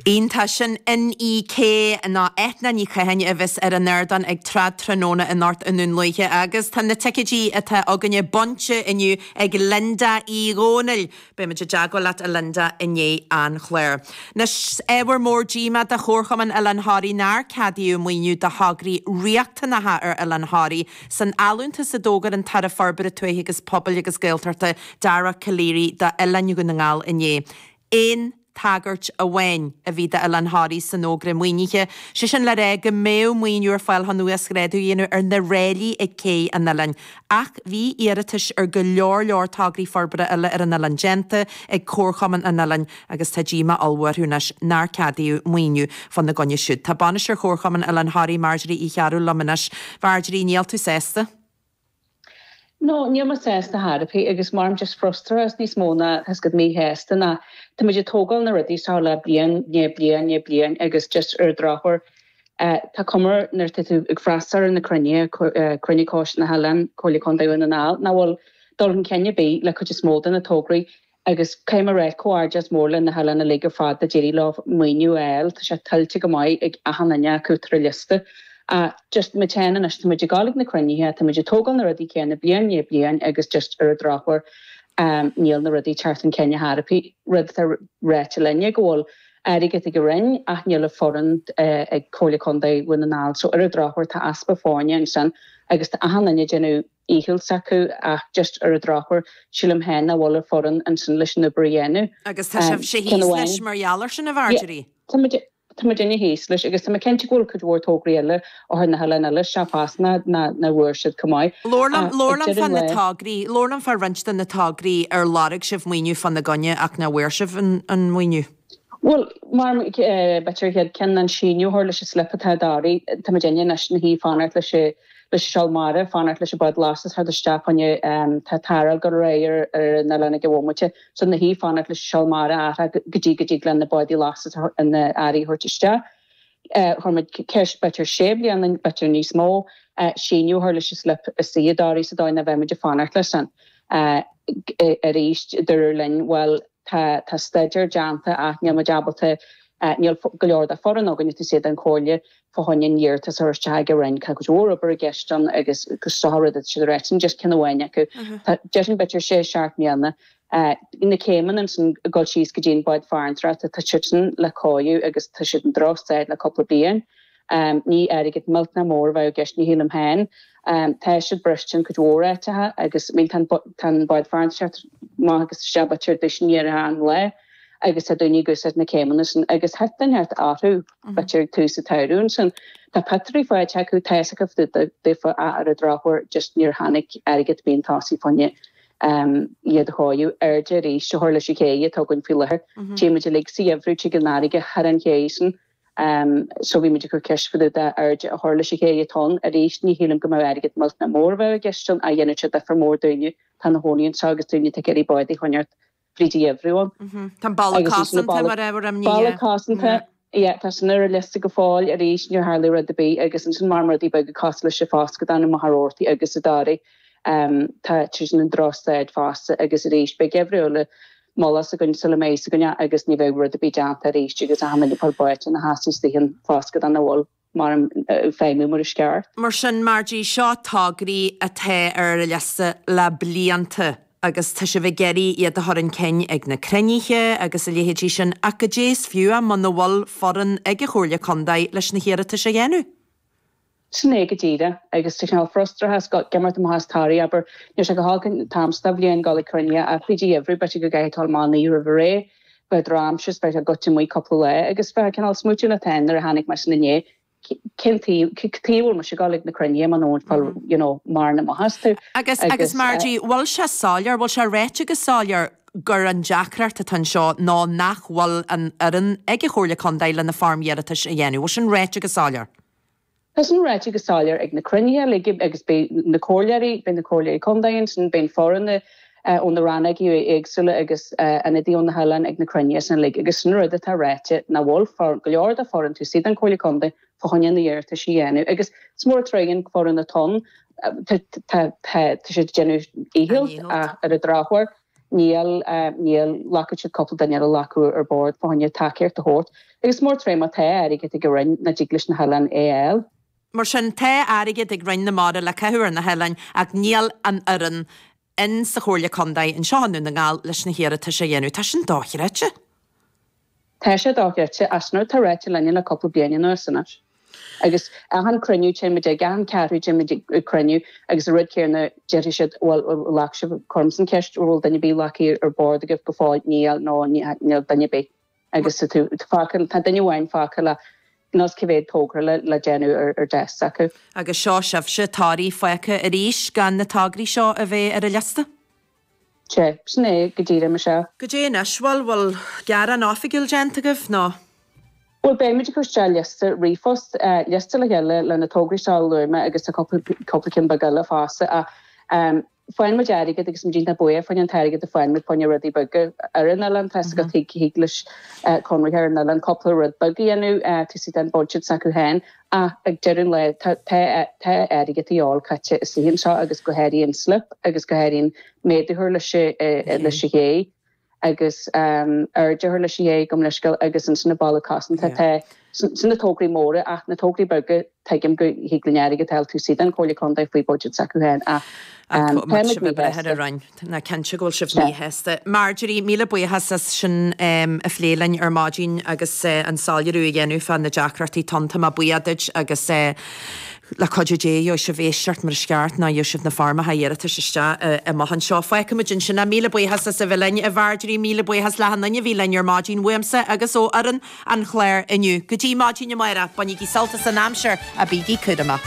Iontach! Sin Inni-K ná Eithne Ní Chatháin a bheas ar an ardán ag Trad Tráthnóna anocht i nDún Lúiche agus tá na ticéidí atá againne bainte inniu ag Linda Uí Dhomhnaill! Beidh muid i dteagmháil leat a Linda i ndiaidh an chláir. Anois ábhar mór díomá do Chomharchumann Oileán Thoraí nár ceadaíodh maoiniú do thograí riachtanacha ar Oileán Thoraí, san allúntas a d'fhógair an tAire Forbartha Tuaithe agus Pobail agus Gaeltachta, Dara Calleary, d'Oileáin Dhún na nGall inné. Aon tagairt amháin a bhí d'Oileán Thoraí san fhógra maoinithe, sé sin le rá go mbeadh maoiniú ar fáil chun uasghrádú a dhéanamh ar na ráillí ag cé an oileáin. Ach bhí iarratais ar go leor leor tograí forbartha eile ar an oileán déanta ag Comharchumann an oileáin, agus tá díomá ollmhór orthu anois nár ceadaíodh maoiniú fá na gcoinne siúd. Tá bainisteoir Chomharchumann Oileán Thoraí, Marjorie Uí Chearbhaill liom anois. Mharjorie, níl tú sásta? No, níl mé sásta ar chor ar bith agus mothaím just frustrachas níos mó ná as go míshásta ná. Tá muid ag tógáil na rudaí seo le bliain i ndiaidh bliain i ndiaidh bliain agus just ar an drochuair tá cuma air nuair tá tú ag freastal ar na cruinnithe, cruinniú Choiste na hOileáin, Comhairle Contae Dhún na nGall, nach bhfuil dul chun cinn ar bith le cuid is mó de na tograí. Agus caithfidh mé a ráit comhghairdeas mór leis na hoileáin uilig ar fad a d'éirigh leo maoiniú a fháil, tá sé tuillte go maith ag achan duine acu atá ar an liosta. Ach just muid féin anois, tá muid ag dul ag na cruinnithe, tá muid ag tógáil na rudaí céanna bliain i ndiaidh bliain agus just ar an drochuair níl na rudaí ag teacht chun cinn ar chor ar bith. Rud atá ráite linne go bhfuil airgead ag an Roinn ach níl an fhoireann ag Comhairle Contae Dhún na nGall so ar an drochuair tá easpa foirne ansin agus tá achan duine ag déanamh dhícheall s'acu ach just ar an drochuair sílim féin nach bhfuil an fhoireann ansin leis an obair a dhéanamh. Agus tá sibhse thíos leis mar gheall ar sin, a Mharjorie? Yeah, tá muidinne thíos leis agus tá mé cinnte go bhfuil cuid mhór tograí eile ó thaobh na hoileáin eile seo fosta nach bhfuair siad chomh maith. Labhair liom, labhair liom fá na tograí, labhair liom fá roinnt de na tograí ar lorg sibh maoiniú fá na gcoinne ach nach bhfuair sibh an maoiniú. Bhuel, mar b'fhéidir an chéad cheann ná síneadh a chur leis an slip atá i dToraigh, tá muidinne anois ina suí ag fanacht leis an. leis an seol mara, fanacht leis an bád lastais a theacht isteach cionn is tá tarráil ag dul ar aghaidh ar an oileán ag an bhomaite so ina suí ag fanacht leis an seol mara a athrú go dtí go dtig leis na bádaí lastais na hearraí a thabhairt isteach. Chuir muid ceist b'fhéidir sé bliana nó b'fhéidir níos mó, síneadh a chur leis an slip seo i dToraigh sa dóigh nach mbeadh muid ag fanacht leis sin. Arís dúradh linn bhuel tá tá staidéar déanta ach níl muid ábalta, níl go leor de fhoireann againn, is iad an Comhairle, fá choinne an iarratas a thabhairt ag an Roinn. Tá go leor obair i gceist ann agus gach sórt rud i gceist ar áit. Sin just ceann amháin acu. Tá sé ansin b'fhéidir sé seacht mbliana. Na céimeanna ansin ag dul síos go dtí an bád farantóireachta, tá siad sin le cóiriú agus tá siad in drochstaid le cúpla bliain. Ní airgead millteanach mór a bheadh i gceist, ní shílim féin. Tá siad briste in cuid mhór áiteacha agus I mean tá an bád farantóireachta amach agus isteach idir tús is deireadh an lae agus tá daoine ag úsáid na céimeanna sin agus níl sé ceart orthu. Turasóirí sa tsamhradh ansin. Tá patrún faighte acu, tá fhios acu fá dtaobh daofa ach ar an drochuair just níor tháinig airgead chun tosaigh fá choinne um iad a shocrú. Airde arís a chur leis an chéidh atá againn faoi láthair. Tchíonn muid uilig sa gheimhreadh go dtig an fharraige thar an chéidh sin um so bhí muid ag cur ceist fá dtaobh de airde a chur leis an chéidh atá ann arís ní shílim go mbeadh airgead millteanach mór a bheadh i gceist ann ach dhéanfadh sé difear mór dúinne tá na hoileánaigh anseo agus daoine ag iarraidh bád a choinneáilt Bridie Everyone. Tá an balla Agus ansin na cosanta balla, mar ábhar imní balla é. cosanta, yeah, tá sin ar an liosta go fóill, arís, níor tharla rud ar bith, agus ansin maireann rudaí beaga cosúil leis sin fosta, cad é na múrálacha agus i ndáiríre, em, tá sé sin i ndrochstaid fosta, agus arís, beidh geimhreadh eile buailte againn sula mbeidh fhios againn, agus ní bheidh rud ar bith déanta arís, agus áit ina mbíonn báid ina theas is doighin fosta, go dtáinig a bhfuil. ag feidhmiú mar is ceart. Mar sin, Marjorie seo tograí atá ar an liosta le blianta agus tá sibh ag iarraidh iad a chur chun cinn ag na cruinnithe agus a leithéidí sin ach goidé is fiú é muna bhfuil foireann ag an Chomhairle Contae leis na hiarratais a dhéanamh. Sin é go díreach. Agus tá cineál frustrachas ag dul amach as Toraigh, abair. Níl sé go holc an t-am seo de bhliain dul ag cruinnithe ach i dtrátha an gheimhridh beidh sé go gcaithfidh tú imeacht roimh ré. Beidh drochaimsir is beidh tú gafa amuigh cupla lá agus bheadh cineál smaointiú an t-am nuair a tháinig muid 'na ndiaidh. Cén taobh, cad taobh bhfuil muid ag gabháil chuig na cruinnithe mura bhfuil, you know, mura mothaíonn tú? Agus, agus Marjorie, bhfuil sé soiléir, bhfuil sé ráite go soiléir gur an deacracht atá anseo ná nach bhfuil an fhoireann ag an Chomhairle Contae leis na foirmeacha iarratais a dhéanamh? Bhfuil sin ráite go soiléir? Tá sin ráite go soiléir ag na cruinnithe uilig agus beidh na comhairleoirí, beidh na comhairleoirí contae ansin, beidh na foirne ó na rannógaí éagsúla agus ionadaithe ó na hoileáin ag na cruinnithe sin uilig agus sin an rud atá ráite nach bhfuil go leor d'fhoireann taobh istigh den Comhairle Contae fá choinne na iarratais a dhéanamh agus is mór an trua é, an fhoireann atá ann, tá siad ag déanamh a ndícheall ach ar an drochuair. Níl, níl. Ghlacfadh siad cúpla duine eile acu ar bord fá choinne tacaíocht a thabhairt. Agus is mór an trua é má tá airgead ag an Roinn nach dtig leis na hoileáin é a fháil. Mar sin, tá airgead ag Roinn na Mara le caitheamh ar na hoileáin ach níl an fhoireann in sa Chomhairle Contae anseo i nDún na nGall leis na hiarratais a dhéanamh. Tá sin dochreidte. Tá sé dochreidte, agus an rud atá ráite linne le cúpla bliain anuas anois, agus achan cruinniú a théann muid aige, achan ceathrú téann muid ag cruinniú, agus an rud céanna déarfaidh siad, bhuel, glacfaidh sibh, cuirim an cheist, an bhfuil duine ar bith glactha ar bord agaibh go fóill? Níl, no, níl duine ar bith. Agus tá fágtha, tá duine amháin fágtha le, níl 'fhios cé mhéad togra le, le déanamh ar, ar deasc s'acu. Agus seo sibhse, tograí fágtha arís, gan na tograí seo a bheith ar an liosta. Sea, sin é go díreach, Michelle. Go dtí anois, bhfuil, bhfuil gearán oifigiúil déanta agaibh, nó? Bhuel, beimid ag cur isteach liosta ríomhphost, liosta le chéile, le na tograí seo a lua mé, agus tá cúpla ceann beag eile fosta, ach faigheann muid airgead, agus muid iontach buíoch faoin an t-airgead a faigheann muid faoina rudaí beaga ar an oileán. Tá 'fhios agat, thig leis an chonraitheoir ar an oileán cúpla rud beag a dhéanamh, taobh istigh den budget s'acu féin, Ach ag deireadh an lae, tá airgead ar gheall caite isteach anseo agus go háirithe an slip agus go háirithe an méadú thar leis an ché agus airde thar leis an ché gabh mo leithscéal agus ansin na ballaí cosanta tá sin na tograí móra ach na tograí beaga tuigim go thig linn airgead a fháil taobh istigh den Chomhairle Contae faoi budget s'acu féin ach tá na gníomh breithe ar an. Tá, cinnte go bhfuil sibh míshásta. Marjorie, míle buíochas as sin a phlé linn ar maidin agus an soiléiriú a dhéanamh fá na deacrachtaí atá ann. Tá mé buíoch duit agus le cuidiú Dé gheobhaidh sibh éisteacht mar is ceart nuair a gheobhaidh sibh na foirmeacha iarratais isteach am inteacht anseo. Fágfaimid ansin é. Míle buíochas as a bheith linn. A Mharjorie, míle buíochas le achan duine a bhí linn ar maidin, uaimse agus ó fhoireann an Chláir inniu. Go dtí maidin amáireach, bainigí sult as an aimsir agus bígí cúramach.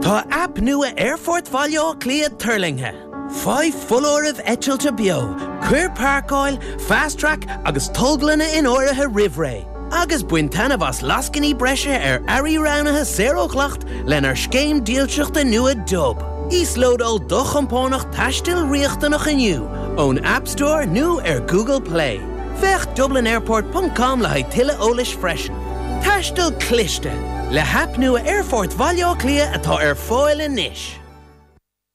Tá aip nua Aerfort Bhaile Átha Cliath tuirlingthe! Faigh foláirimh eitilte beo, cuir Páirceáil, Fast Track agus Tolglanna in áirithe roimh ré. agus bain taitneamh as lascainí breise ar earraí roghnaithe saor ó dhleacht lenár scéim dílseachta nua Dub. Íoslódáil do chompánach taistil riachtanach inniu ón App Store nó ar Google Play. Féach dublinairport ponc com le haghaidh tuilleadh eolais freisin. Taisteal cliste, le haip nua Aerfort Bhaile Átha Cliath atá ar fáil anois!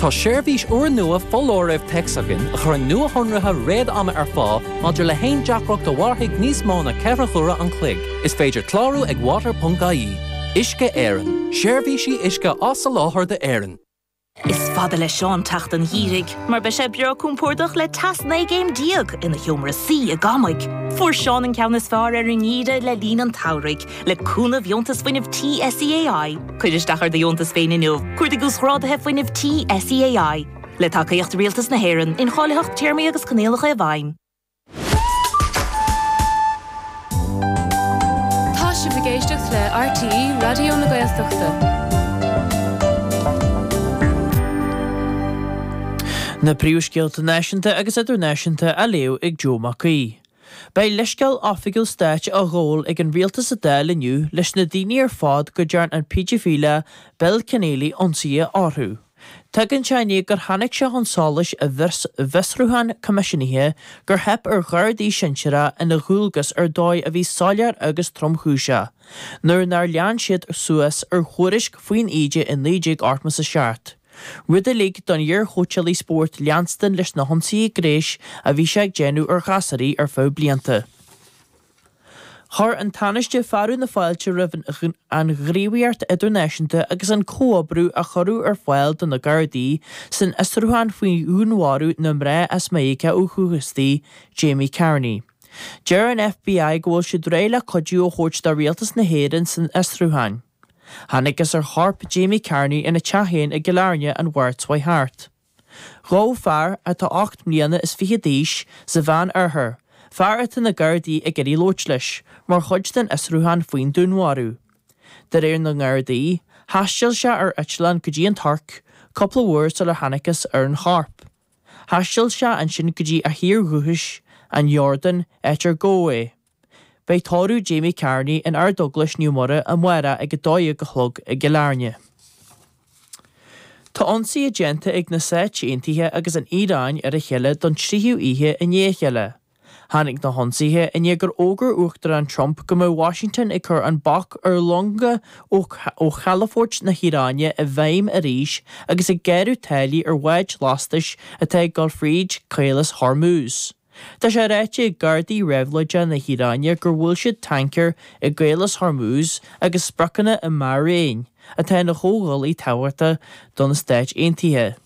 Tá seirbhís úrnua foláirimh téacs againn a chuireann nuashonruithe réad-ama ar fáil maidir le haon deacracht a mhairfidh níos mó ná ceithre huaire an chloig. Is féidir clárú ag water.ie. Uisce Éireann, seirbhísí uisce á soláthar d'Éirinn. Is fada le Seán teacht an gheírigh mar beidh sé breá cúmpórdach le teas 19 gcéim ina sheomra suí i gCamaigh. Fuair Seán an ceann is fearr ar an nGíre le línn an tSamhraidh. Le cúnamh Dheontas Fuinnimh an SEAI, cuir isteach ar do dheontas féin inniu. Cuardaigh Uasghráduithe Fuinnimh an SEAI. Le tacaíocht Rialtas na hÉireann, incháilitheacht, téarmaí agus coinníollacha i bhfeidhm. Tá sibh ag éisteacht le RTÉ Raidió na Gaeltachta. Na príomhscéalta náisiúnta agus idirnáisiúnta á léamh ag Joe Mac Aoidh. Beidh leithscéal oifigiúil stáit á ghabhail ag an rialtas sa Dáil inniu leis na daoine ar fad go dtearn an péidifíleach Bill Kenneally ionsaithe orthu. Tagann sé i ndiaidh gur tháinig sé chun solais i bhfiosrúchán coimisiúnaithe gur theip ar ghardaí sinsearacha ina dhualgas ar dhóigh a bhí soiléir agus tromchúiseach nuair nár lean siad suas ar thuairisc faoin íde i 19 87. rud a lig don iarchóitseálaí spóirt leanstan leis na hionsaithe gnéis a bhí sé ag déanamh ar ghasúraí ar feadh blianta. Chuir an Tánaiste fearadh na fáilte roimh an ghníomhaíocht idirnáisiúnta agus an comhoibriú a cuireadh ar fáil do na Gardaí san fhiosrúchán faoi dhúnmharú na mná as Meiriceá ó dhúchas di, Jamie Carney. Deir an FBI go bhfuil siad réidh le cuidiú a thabhairt do Rialtas na hÉireann san fhiosrúchán. Thángthas ar chorp Jamie Carney ina teach féin i gCill Airne an Mháirt seo chuaigh thart. Gabhadh fear, atá ocht mbliana is fiche d'aois, sa Mheán Oirthear, fear atá na Gardaí ag iarraidh labhairt leis, mar chuid den fhiosrúchán faoin dúnmharú. De réir na nGardaí, thaisteal sé ar eitleán go dtí an Tuirc, cúpla uair sular thángthas ar an chorp. Thaisteal sé ansin go dtí a thír dhúchais, an Iordáin, áit ar gabhadh é. Beidh tórramh Jamie Carney in Ardeaglais Naomh Muire amárach ag a dó dhéag a chlog i gCill Airne. Tá ionsaithe déanta ag na Stáit Aontaithe agus an Iaráin ar a chéile don tríú oíche i ndiaidh a chéile. Tháinig na hionsaithe i ndiaidh gur fhógair Uachtarán Trump go mbeadh Washington ag cur an bac ar longa ó chalafoirt na hIaráine i bhfeidhm arís agus ag gearradh táillí ar bháid lastais atá ag dul fríd Caolas Hormuz. Tá sé ráite ag Gardaí Réabhlóide na hIaráine gur bhuail siad tancaer i gCaolas Hormuz agus spriocanna i mBairéin, atá ina chomhghuaillí tábhachtach do na Stáit Aontaithe.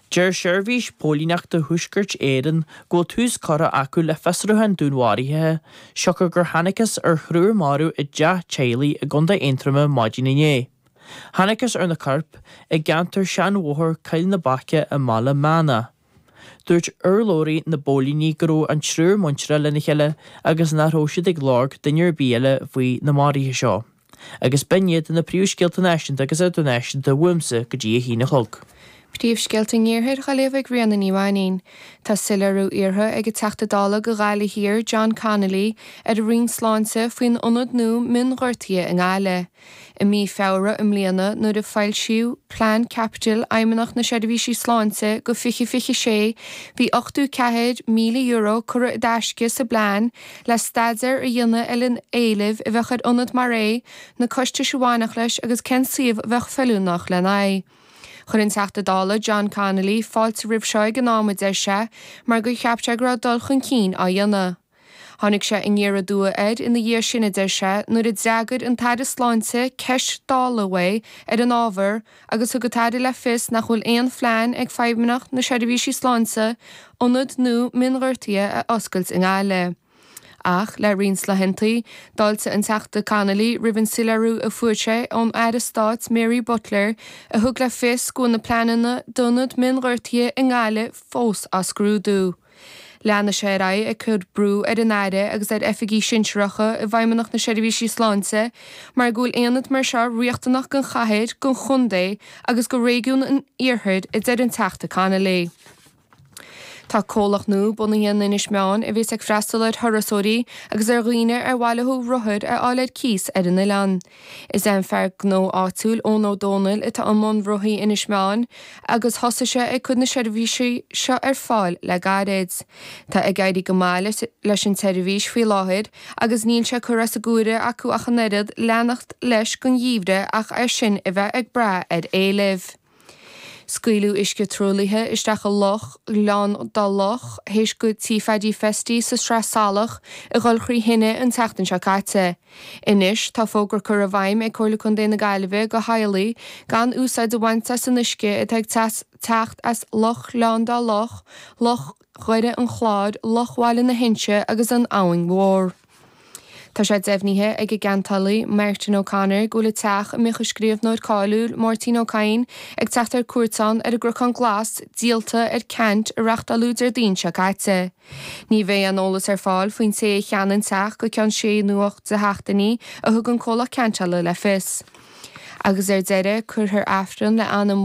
Deir Seirbhís Póilíneachta Thuaiscirt Éireann go bhfuil tús curtha acu le fiosrúchán dúnmharaithe siocair gur thángthas ar thriúr marbh i dteach teaghlaigh i gContae Aontroma maidin inné. Thángthas ar na coirp i gceantar seanbhóthar Choill na Baice i mBaile Meánach. Dúirt urlabhraí na bpóilíní go raibh an triúr muinteartha lena chéile agus nach raibh siad ag lorg duine ar bith eile faoi na maruithe seo. Agus b'in iad na príomhscéalta náisiúnta agus idirnáisiúnta uaimse go dtí a haon a chlog. Príomhscéalta an iarthair Ghaillimh ag Ríona Ní Mhainín. Tá soiléiriú iarrtha ag an Teachta Dála go Ghaillimh Thiar John Connolly ar an Roinn Sláinte faoin ionad nua mionghortaithe i nGaillimh. I mí Feabhra i mbliana, nuair a foilsíodh Plean Caipitil Fheidhmeannacht na Seirbhísí Sláinte go 2026, bhí €84,000 curtha i dtaisce sa bplean le staidéar a dhéanamh ar an éileamh a bheadh ar ionad mar é, na costais a bhainfeadh leis agus cén suíomh a bheadh feiliúnach lena aghaidh. Chuir an Teachta Dála John Connolly fáilte roimh seo ag an am a deir sé mar gur cheap sé go raibh dul chun cinn á dhéanamh. Tháinig sé aniar aduaidh air ina dhiaidh sin, a deir sé, nuair a d'fhreagair an tAire Sláinte ceist Dála uaidh ar an ábhar agus thug an tAire le fios nach bhfuil aon phlean ag Feidhmeannacht na Seirbhísí Sláinte ionad nua mionghortaithe a oscailt i nGaillimh. Ach le roinnt laethanta, d'fháiltigh an Teachta Connolly roimh an soiléiriú a fuair sé ón Aire Stáit Mary Butler a thug le fios go bhfuil na pleananna d'ionad mionghortaithe i nGaillimh fós á scrúdú. Leanfaidh sé ar aghaidh ag cur brú ar an Aire agus ar oifigigh shinsearacha i bhFeidhmeannacht na Seirbhísí Sláinte mar go bhfuil aonad mar seo riachtanach don chathair, don chontae agus go réigiún an iarthair, a deir an Teachta Connolly. Tá comhlacht nua bunaithe in Inis Meáin a bheas ag freastal ar thurasóirí agus ar dhaoine ar mhaith leo rothair a fháil ar cíos ar an oileán. Is é an fear gnó áitiúil Eoin Ó Dónaill atá i mbun Rothaí Inis Meáin agus thosaigh sé ag cur na seirbhísí seo ar fáil le gairid. Tá ag éirí go maith leis an tseirbhís faoi láthair agus níl sé curtha as an gcomhaireamh acu ach an oiread leanacht leis don gheimhreadh ach é sin a bheith ag brath ar éileamh. Scaoileadh uisce truaillithe isteach i Loch Ghleann Dá Loch théis go Tigh Phaddy Festy sa Sraith Salach a dhul trí thine an tseachtain seo caite. Anois tá fógra curtha i bhfeidhm ag Comhairle Contae na Gaillimhe go theaghlaigh gan úsáid a bhaint as an uisce atá ag teacht as Loch Ghleann Dá Loch, Loch Dhoire an Chláir, Loch Bhaile na hInse agus An Abhainn Mhór. Tá sé deimhnithe ag an gceantálaí Martin O'Connor go bhfuil an teach a mbíodh an scríobhnóir cáiliúil Máirtín Ó Cadhain ag teacht ar cuairt ann ar an gCnocán Glas díolta ar ceant a reachtáladh Déardaoin seo caite. Ní bheidh aon eolas ar fáil faoin té a cheannaigh an teach go ceann sé nó ocht de sheachtainí a thug an comhlacht ceantála le fios. Agus ar deireadh, cuirfear Aifreann le anam